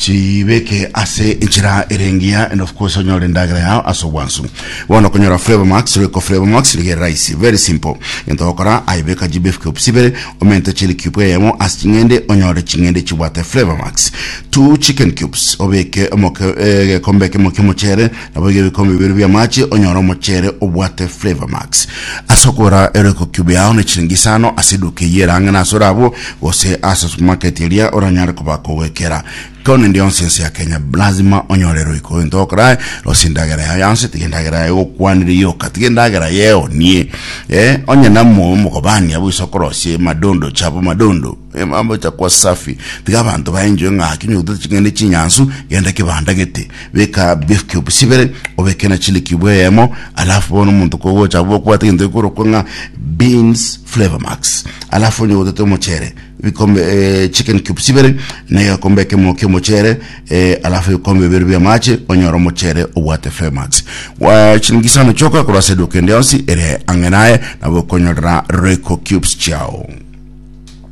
chibeke ase enchera ere engiya and of course onyore endagera yao ase obwansu bono okonyora flavor max royco flavor max niga ere rahisi very simple egento ogokora aye beka gbf cubes ibere omente chili cube eyemo ase ching'ende onyore ching'ende chibwate flavor max two chicken cubes obeke omoke eh, egekombe ekemo ki'omochere Naboigo ebikombe bibere bi'amache onyore omochere obwate Flavour Max. Ase okogora eroiko cube yao ne chiringi isano ase eduka eyio erang'ana ase orabwo gose ase supermarket eria oranyare koba kogwekera. Kore nende yonsi ense ya Kenya lazima onyore eroiko. Gento ogokora aye rosia endagera yao yonsi tiga endagera yao egokwanire yoka tiga endagera yeonie eh onye na mo omogobani abwo gose okorosia emadondo chabo madondo eh mambo chakwa safi tiga abanto ba enjoy ng'aki onye gotete ching'ende chinyansu genda kebanda gete Beka beef cube chibere, obeke na chili cube eyemo, alafu bono omonto kogocha abwo okwate egento gekorokwa ng'a beans flavor max, alafu onye otete omochere ebikombe eh, chicken cube chibere na egekombe ekemo ki'omochere eh, alafu ebikombe bibere bi'amache onyore omochere obwate flavor max Wa- chilingi isano chioka korwa ase eduka ende yonsi ere ang'e naye nabo okonyorera royco cubes chiao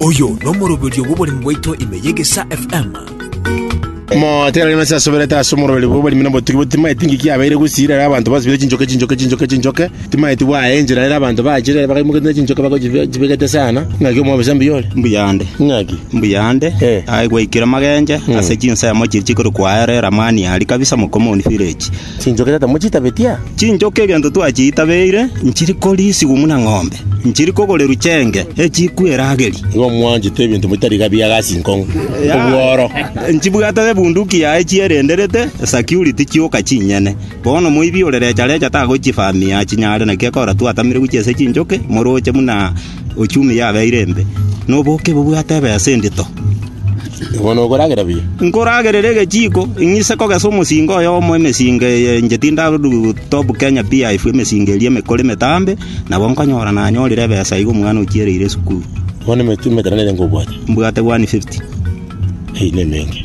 Oyo nomoroberio bw'oboremi bwaito ime y'Egesaa FM. Omogote rarema ase asoberete ase omoroberi bw'oborimi na obotugi boto timaeti ng'iki yabeire gusira ere abanto basibire chinchoke chinchoke chinchoke chinchoke timaeti bwaya enchera ere abanto bachire bakaimoketie na chinchoke bagochibegete sana ng'aki omobisa mbuya ore mbuyande ng'aki mbuyande Eh. aye gwaikire magenche ase chinsemo chiria chikore kwaerera mani aria kabisa mokomoni village Chinchoke tata mochitabetia? Chinchoke egento twachiitabeire nchiri koriisigwa buna ng'ombe, nchiri kogorerwa cheenge echikwe erageri. Nigo mwanchete ebinto bitari gabia gase inkong'u, obworo. Nchibwate ebunduki yaye chierenderete, esecurity chioka chinyene. Bono moibi ore recha recha tagochifamia chinyare naki ekora twatamire gochia ase chinchoke, moroche buna Ochumi yabeire embe, na oboke bobwate ebesa endito. Bono okoragera buya. Nkoragerere egechiiko, ing'ise kogesa omosinga oyomo emesinga eye inche tindarudu Top Kenya PIF emesinga eria emekoro emetambe, nabo nkonyora nanyorire ebesa iga omwana ochiereire esukuru. Bono emetwe emetanane ngobwate. Mbwate 150. Eyio ne emenge.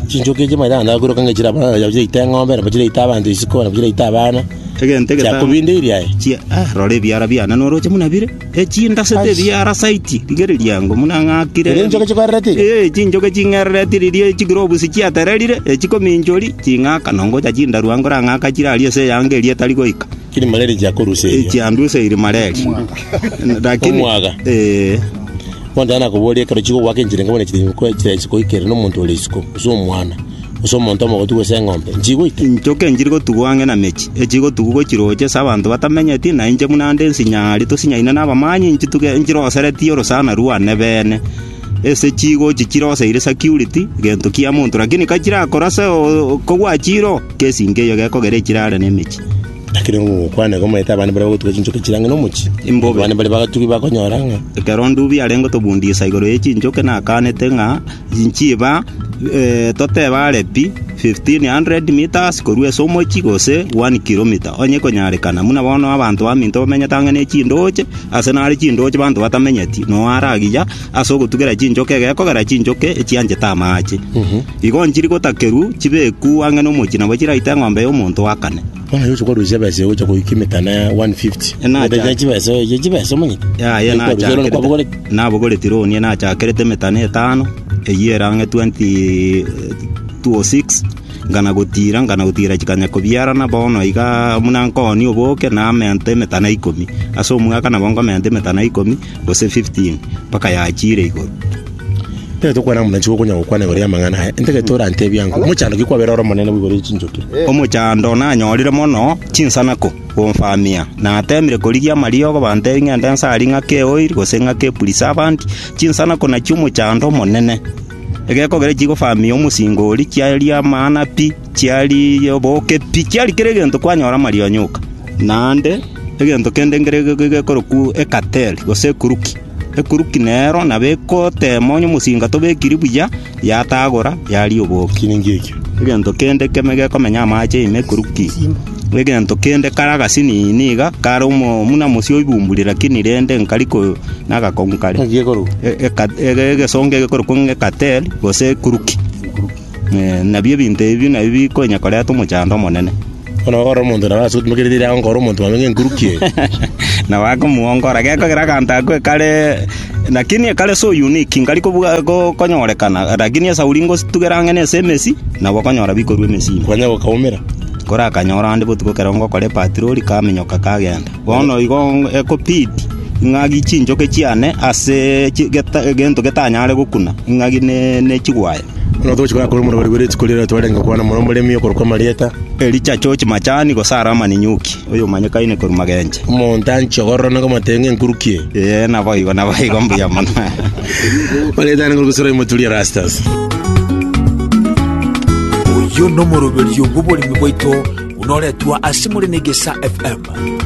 Chinchoki echi manyete naende agakwiroka ng'a chire abana, nabo chiraita eng'ombe, nabo chiraita abanto isiko, nabo chiraita abana. Egento egetang'ani- Chiakobindeiri aye. Chia- ah, rora ebiara biane noroche buna bire echindasete ebiara saiti rigereria ango buna ng'akire Erio enchoka chikwerereti? Eh, chinchoke ching'erereti riria chikire obusi chiatererire echikominchori ching'aka nongocha chindaru ango orang'aka chire aria ase eyanga eria etari goika Erima reria chiakoruseria. echiandusa erima reria lakini Omwaga. eh, Bontana nakoboria ekero chigogoaka enchera enke buna chiri enko enchera isiko ikerire nomonto ore isiko, gose omwana, gose omonto omogotu gose eng'ombe, nchigoita? inchoka enchiri gotugwa ang'e na mechi echigotugwa gochiroche ase abanto batamenyeti na inche buna nde nsinyari tosinyaine na abamanyi nchituge nchiroseretie orosana rwane bene Ase chigochi chiroseire security gento kia monto lakini ka chirakora ase okogwa chiro kesinge eyo gekogera echire are ne emechi. Lakini ogokwana iga omanyete abande baria bagotuga chinchoka chire ang'e nomochie. Imbobe. Abande baria bagatugi bakonyora ng'a Ekero Ndubi are gotobundisa igoro ye chinchoke nakanete ng'a nchiba eh, totebe are pi. fifteen hundred metres korwa ase omochie, gose one kilometre, onye ekonyarekana, buna bono abanto baminto bamenyete ang'e ne chindooche, ase nare chindooche banto batamenyeti, noyo are agiya ase ogotugera chinchoki egekogera chinchoki echianchete amaache. Igo nchiri gotakerwa, chibekwu ang'e nomochie nabo chiraite eng'ombe y'omonto o kane. Bono aye ochokorwa chibesa echi ogocha koyia emetano ya 150 Ena Egento kia acha- chibesa oye chia chibesa omanyete Yaya Ekwarwa chibesa olore nachakerete kwabogorete nabogoreti roni nachakerete emetano etano eyio ero ang'e 20 206 ngana gotira ngana gotira chikanya kobiarana bono iga buna nkoonia oboke namenta emetana ikomi ase omwaka nabo nkomenta emetana ikomi gose 15, mpaka yachiire igoro. Ekero tokwana ng'a motachigwa konya gokwana igoro y'amang'ana aya, inta gete orantebie ang'o? Omochando ki kwabera ore omonene boigo ore chinchokire? Omochando nanyorire mono chinsanako gomfamia, nateemire korigia amariogo bantebie ng'ende nsari ng'a keoiri gose ng'a kepurisavant, chinsanako nachio omochando omonene. Egekogera chigofamia omosinga oria, chiaria amang'ana pi. Chiari oboke pi, chiari kera egento kwanyora amarionyo oka. Naende egento kende nkere gekorokwa ekateli, gose ekuruki. Ekuruki nero nabo egotema onye omosinga tobekiri buya, yatagora, yaria oboke. Egento kende keme gekomenya amache ime ekuruki, egento kende kare agasinini iga, kare omo buna mosio oibumburi lakini rende nkari ko na agakong'u kare. Eka- ege- egesongo egekorokwa ng'a ekateli, gose ekuruki. Nabio ebinto ebio nabio bikonya koreta omochando omonene. Bono ore omonto nabo ase otimokerete ere aonga ore omonto mwabe ng'enkuruki eye. Nabo akomwongora, gekogera aganto ako ekare lakini ekare so unique, nkari kobuga- ko- konyorekana, lakini esauri ngositugera ang'e na ase emesi, nabo okonyora bikorwa emesini. Kwanya gokaumera. Kore akanyora onde botuko ekero ngokora epatirori kamenyoka kagenda. Bono igo ong- ekobidi ng'agi chinchoke chiane ase chi- geta- egento getanyare gokuna, ng'agi ne- ne chigwaya. Buna togochia koyakora omorero bwerwe rituko riarero twarenge gokwana mono omoremi okorokwa Marieta, Elija achoche machani, gose are amaninyuki, oyomanyekaine korwa magenche. omonto anchie ogorora na komatera ng'enkuruki eye. Ee, naboigo, naboigo, mbuya mono. Marieta arenge korokwa Surai moturi Erastus. Oyio nomoroberio bw'oboremi bwaito buna oretwa ase more na Egesa FM.